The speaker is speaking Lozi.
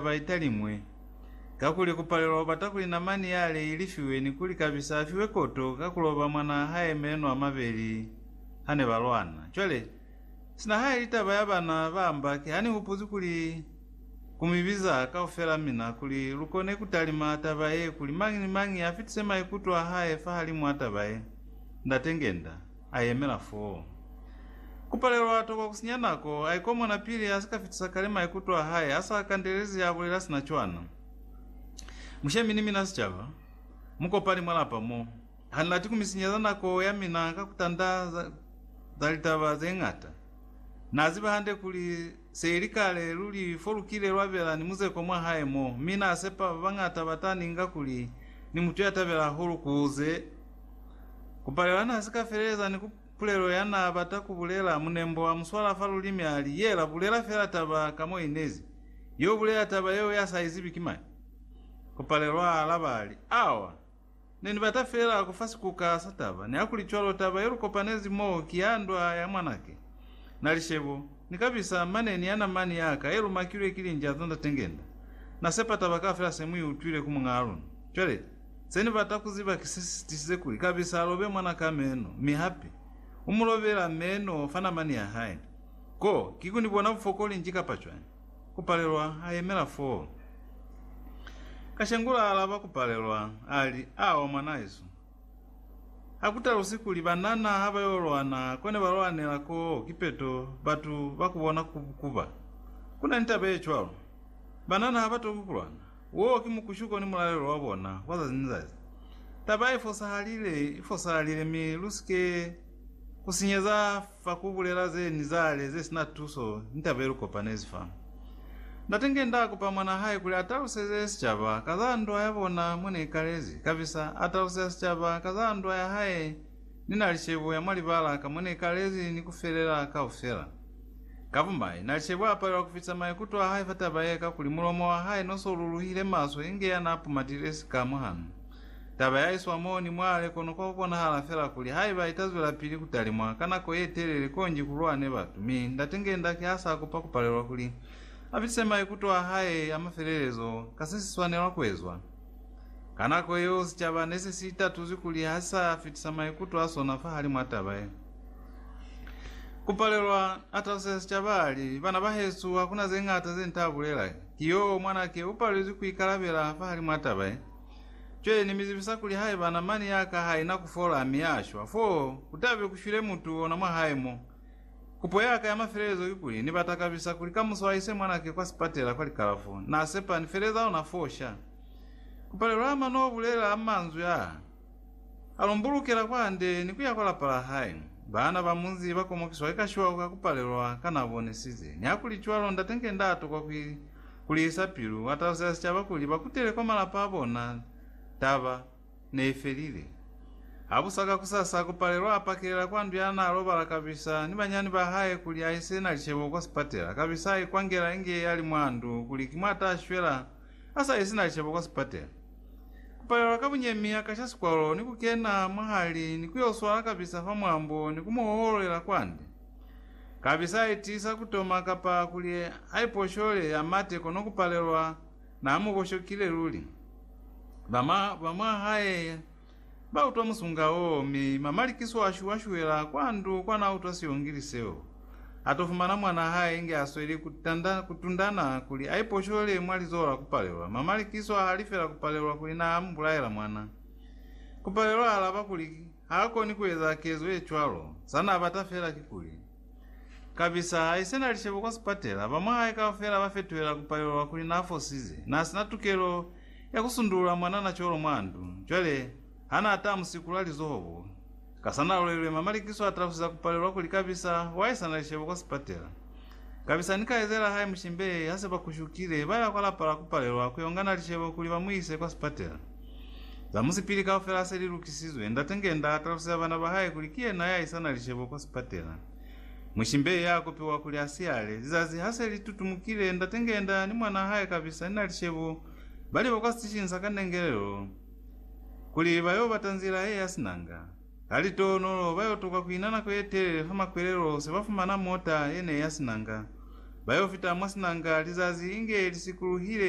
ba italiñwi, kakuli ku palelwa ku bata kuli namani yale i lifiwe ni kuli Kabisa a fiwe koto ka ku loba mwanaa hae meno a mabeli ha ne ba lwana. Cwale, sina haili taba ya bana ba mba, ki ha ni hupuzwi kuli ku mi biza kaufela mina kuli lu kone ku talima taba ye, kuli mañi ni mañi a fitise maikuto a hae fahalimu a taba ye. Ndate Ngenda. A yemela foo. Ku palelwa a tokwa ku sinya nako, a ikomona pili a si ka fitisa kale maikuto a hae a sa kandelezi a bulela sina cwana. Mushemi ni mina sicaba, mukopani mwa lapa mo. Ha ni lati ku mi sinyeza nako ya mina ka ku tanda za litaba ze ñata. Na ziba hande kuli, Seili kale luli fo lukile lwabela ni muzeko mwa hae mo, mi nasepa babañata bata ninga kuli ni mutu yatabela hahulu kuze kupalela na sika feleleza ni ku pulelo ya na bata kubulela. Munembo a muswala fa lulimi ali, Yela, bulela fela taba ka mo inezi. Yo bulela taba yeo ya sa izibi ki mani. Kupalelo a alaba ali, Awa! Ne ni bata feela ku fa sikuka sa taba, ni hakuli cwalo taba ye lu kopanezi mo ki ya ndwa ya mwanake. Na li, Shebo, ni ka bisa mane ni yana mani ya ka ye lu makilwe ki linja za Ndate Ngenda. Na sepa taba kaufela se mu i utwile ku muñaa luna. Cwale, se ni bata ku ziba ki se si tisize kuli kabisa a lobe mwana ka meno, mi hape, u mu lobela meno fa namani ya hae. Ko, ki ku ni bona bufokoli nji kapa cwañi? Kupalelwa a yemela foo. Kashengula a alaba Kupalelwa, a li, Awa mwanaesu. Ha ku talusi kuli banana ha ba yo lwana ko ne ba lwanela koo kipeto batu ba ku bona ku, ku ba. Ku na ni taba ye cwalo. Banana ha ba toki ku lwana. Woo ki mukushuko ni mulalelo wa bona wa zazi ni zazi. Taba i fosahalile, i fosahalile mi lu si ke ku sinyeza Fa ku bulela ze ni zale ze sina tuso, ni taba ye lu kopanezi fa. Ndate nge nda kupa mwan'a hae kuli a taluseze sicaba ka za ndwa ya bona mwa ne ikalezi, kabisa a taluseza sicaba ka za ndwa ya hae, ni na li cebo ya mwa libala ka mo ne ikalezi ni ku felela kaufela. Ka bumai, na li cebo a palelwa ku fitisa maikuto a hae fa taba ye, kakuli mulomo wa hae no so luluhile maswe inge ya n'a pumatile sika mwahanu. Taba ya iswa mo ni mwale kono kwa kukonahala fela kuli haiba ita zwelapili kutalimwa ka nako ye telele konji ku lwane batu, mi ndate nge ndaki ha sa kopa kupalelwa kuli a fitise maikuto a hae a mafelelezo ka se si swanelwa kuezwa. Ka nako yeo sicaba ne se si itatuzwi kuli ha si sa fitisa maikuto a sona fahalimw'a taba ye. Ku palelwa, a taluseza sicaba a li, Bana bahesu, hakuna ze ñata ze ni ta bulela. Ki yo, mwanake u palelwi ku ikalabela fahalimw'a taba ye. Cwale Ni mi zibisa kuli haiba namani ya ka ha ina ku fola mi ya shwa, fo ku ta be ku shwile mutu ona mwa hae mo. Kupo ya ka ya mafelelezo ki kuli, Ni bata kabisa kuli ka muso a iswe mwanake kwa sipatela kwa likalafo. Na sepa Ni feleza ona foo sha. Ku palelwa ama no bulela a manzwi a, A lumbulukela kwa hande ni ku ya kwa lapa la hae. Baana ba munzi ba komokiswa ki ka shwau ka ku palelwa ka na bonisize. Nihakulicwalo, Ndate nge nda tokwa ku Kuli isa pilu, wa talusela sicaba kuli ba kutele kwa malapa a bona. Taba ne i felile. Ha busa ka kusasa, Kupalelwa a pakelela kwa ndu ya n'a lobala kabisa ni banyani ba hae kuli a ise na licebo kwa sipatela. Kabisa a ikwangela inge a li mwa ndu kuli ki mwa ta shwela a sa isi na licebo kwa sipatela. Kupalelwa ka bunyemi a kasha sikwalo ni ku kena mwahali ni ku yo swala kabisa fa mwambo ni ku mu hohololela kwande. Kabisa haitiisa kutoma kapa kuli haiposhole, hamate, kono kupalelwa naamukoshokile luli. Ba mwa, ba mwa hae bautwa musunga woo, mi mamalikiso ashu ashuela kwa ndu kwa nautwa siongili seo. Atofumana mwanaa hae inge asweli kutanda, kutundana kuli aiposhole mwa lizoho la kupalelwa. Mamalikiso ahali fela kupalelwa kuli naamubulaela mwana. Kupalelwa alaba kuli, Haakoni kueza kezo yecwalo, zanaabata feela kikuli, Kabisa haisena lishebo kwa sipatela, bamwahae kaufela bafetuhela kupalelwa kuli naafosize, naasina tukelo ya kusundulula mwanana cwalo mwa ndu, cwale hanaataa musikula lizoho bo, kasanalwelwe mamalikiso atalusiza kupalelwa kuli kabisa waisana lishebo kwa sipatela. Kabisa ni kaizela hae Mushimbe ha se ba kushukile, ba ya kwa lapa la ku palelwa ku yo ngana lishebo kuli ba mu ise kwa sipatela. Za musipili kaufela se li lukisizwe, Ndate Ngenda a taluseza bana ba hae kuli ki yena ya isana lishebo kwa sipatela. Mushimbe ya kopiwa kuli a siyale. Lizazi ha se li tutumukile, Ndate Ngenda ni mwanaa hae Kabisa ni na lishebo ba liba kwa sitishinsa ka nengelelo kuli ba yo bata nzila ye ya sinanga. Ha li tonolo, ba yo tokwa ku ina nako ye telele fa makwelelo se ba fumana mota ye ne ya sinanga. Ba yo fita mwa sinanga lizazi inge li sikuluhile.